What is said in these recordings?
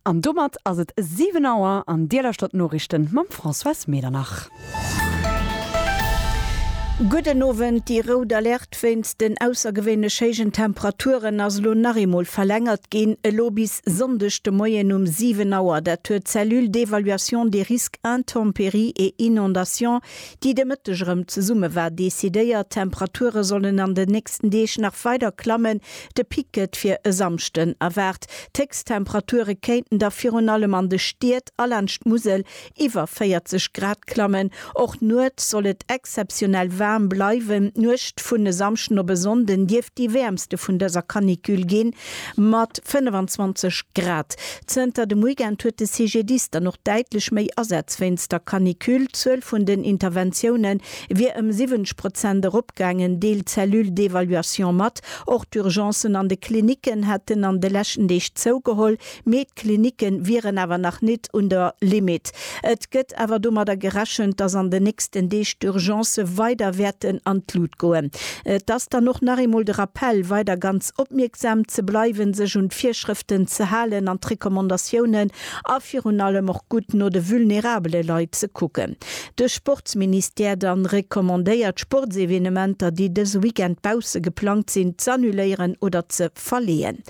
An domat ass et 7 Auer an Dir lauschtert d'Noriichten mam Françoise Medernach. Gudden Owend, déi rout Alerte. D'Fest wéinst den aussergewéinlech héijen Temperaturen ass elo nach eemol verlängert ginn, elo bis Sonndeg de Moien um 7 Auer. Dat huet d'Cellule d'évaluation des risques intempéries et inondations, déi de Mëtteg erëm zesumme war, decidéiert. D'Temperature sollen an den nächsten Deeg nach weider klammen, de Pic gëtt fir e Samschden erwaart. D'Héchsttemperature kéinten da virun allem an de Stied a laanscht d'Musel iwwer 40 Grad klammen. Och nuets soll et exzeptionell waarm bleiwen. D'Nuecht vun e Samschden op e Sonnden dierft déi wäermste vun dëser Canicule ginn, mat 25 Grad. Zënter dem Weekend huet de CGDIS dann och däitlech méi Asätz wéinst der Canicule. D'Zuel vun den Interventioune wier ëm 70 Prozent eropgaangen, deelt d'Cellule d'évaluation mat. Och d'Urgencen an de Klinicken hätten an de leschten Deeg zougeholl. Mee d'Klinicke wieren awer nach nit un der Limitt. Et gëtt awer domadder gerechent, dass an den nächsten Deeg d'Urgencë weider wäerten an d'Lut goen. Et ass dann och nach eemol de Rappell, weider ganz opmierksam ze bleiwen, sech un d'Virschrëften ze halen an d'Recommandatiounen a virun allem och gutt no de vulnerabele Leit ze kucken. De Sportsministère dann recommandéiert, Sportsevenementer, déi dëse Weekend bausse geplangt sinn, z'annuléieren oder ze verleeën.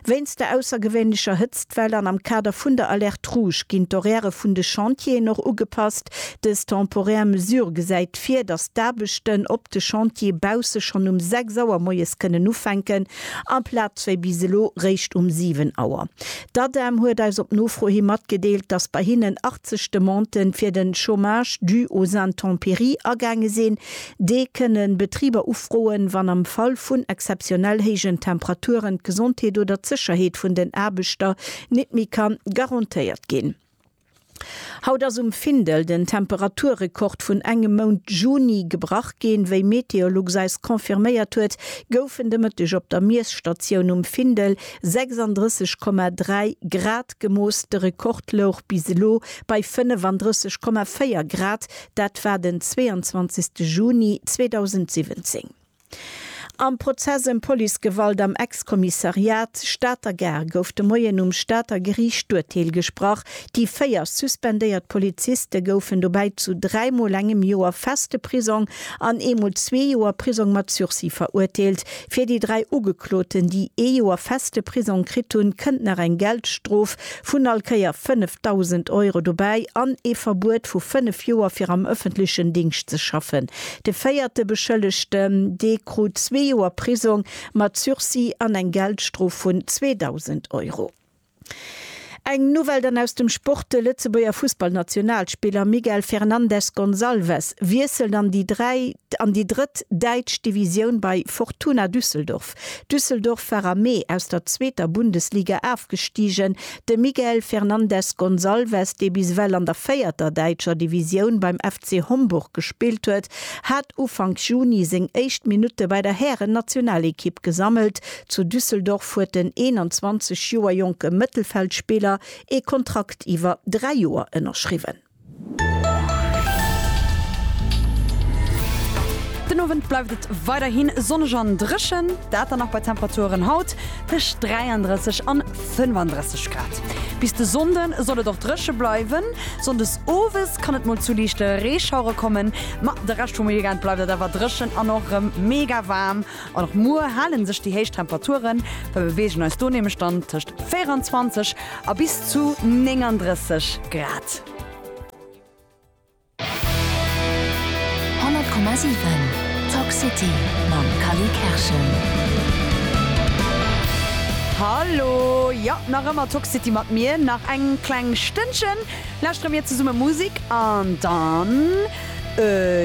Wéinst der aussergewéinlecher Hëtztwell an am Kader vun der Alerte Rouge ginn d'Horairë vun de Chantieren och ugepasst. Dës temporär Mesure gesäit vir, datt d'Aarbechten op de Chantiere bausse schonn um 6 Auer moies kënnen ufänken, amplaz wéi bis elo réischt um 7 Auer. D'Adem huet eis op Nofro hi matgedeelt, datt bei hinnen 80 Demanden fir de Chômage dû aux intempéries agaange sinn. D'EE kënnen Betriber ufroen, wann am Fall vun exzeptionell héijen Temperaturen d'Gesondheet oder d'Sécherheet vun den Aarbechter nit méi ka garantéiert ginn. Haut ass um Findel den Temperaturrekord vun engem Mount Juni gebrach ginn. Wéi Meteolux eis confirméiert huet, goufen de Mëtteg op der Miesstatioun um Findel 36,3 Grad gemooss. De Rekord louch bis elo bei 35,4 Grad, Dat war den 22 Juni 2017. Am Prozess ëm Policegewalt am Ex-Kommissariat Stater Gare gouf de Moien um Stater Geriicht d'Urteel gesprach. Déi véier suspendéiert Poliziste goufen dobäi zu dräi Mol engem Joer feste Prisong an ee Mol zwee Joer Prisong mat Sursis verurteelt. Fir déi dräi Ugekloten, déi ee Joer feste Prisong kritt hunn, kënnt nach eng Geldstrof Vun all Kéier 5.000 Euro dobäi an ee Verbuet vu fënnef Joer fir am ëffentlechen Dingscht ze schaffen. De véierte Beschëllegten, dee krut zwee Joer Prisong mat Sursis an eng Geldstrof vun 2.000 Euro. Eng Nouvelle dann aus dem Sport, De Lëtzebuerger Fussballnationalspiller Miguel Fernandes Gonçalves wiesselt an déi drëtt däitsch Divisioun bei Fortuna Düsseldorf. Düsseldorf war am Mee aus der zweeter Bundesliga afgestigen. De Miguel Fernandes Gonçalves, dee bis ewell an der véierter däitscher Divisioun beim FC Homburg gespillt huet, hat Ufank Juni seng éischt Minutte bei der Hären-Nationalekipp gesammelt. Zu Düsseldorf huet den 21 Joer jonke Mëttelfeldspiller ee Kontrakt iwwer dräi Joer ënnerschriwwen. Den Owend bleift et weiderhi sonneg an dréchen, dat dann nach bei Temperaturen haut tëscht 33 an 35 Grad. Bis de Sonnde soll et och dréche bleiwen, sonndes owes kann et mol zu liichte Reeschauere kommen, ma de Rescht vum Weekend bleift et awer dréchen an och rem mega waarm. An och muer hale sech déi héich Temperaturen, mer beweegen eis do nämlech dann tëscht 24 a bis zu 39 Grad. Hallo, jo nach ëmmer Toxcity mat mir nach eng kleng Stënnchen lauschtere mir zesumme Musik an dann.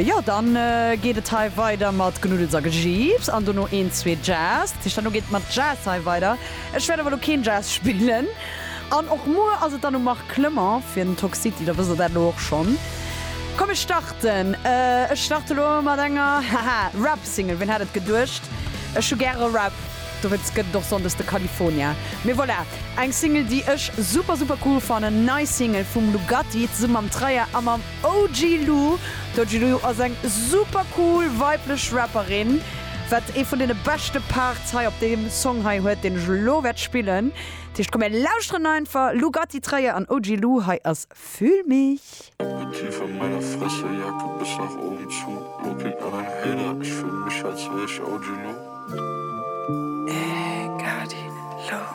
Jo, dann geet et hei weider mat Knuddels a Gejiips an dono een, zwee Jazz. Dat heescht, dann geet et mat Jazz hei weider. Ech wäert awer elo keen Jazz spillen. An och muer ass et dann um Marc Clement fir den Talk City, da wësst Der dat elo och schonn. Komm, ech starten. Ech starte elo mat enger, haha, Rap-Single. Wien hätt et geduecht? Ech hu gäre Rap, dowéinst gëtt et och sonndes de California. Mee voilà, eng Single, déi ech super, super cool fannen. Nei Single vum Lugatti zesumme mam Traia a mam. OG Lou, D'OG Lou ass eng super cool weiblech Rapperin, wat ee vun deene beschte Parts hei op deem Song hei huet, deen ech elo wäert spillen. Dat heescht, komm mir lauschteren einfach Lou Gatti, Träer an OG Lou, hei ass Fühl mich. Elo tief an meiner Fresse, Jacke bis nach oben zu, Looking an en Hater, ech fühl mich als wär ech OG Lou. Ey Gatti, Lou.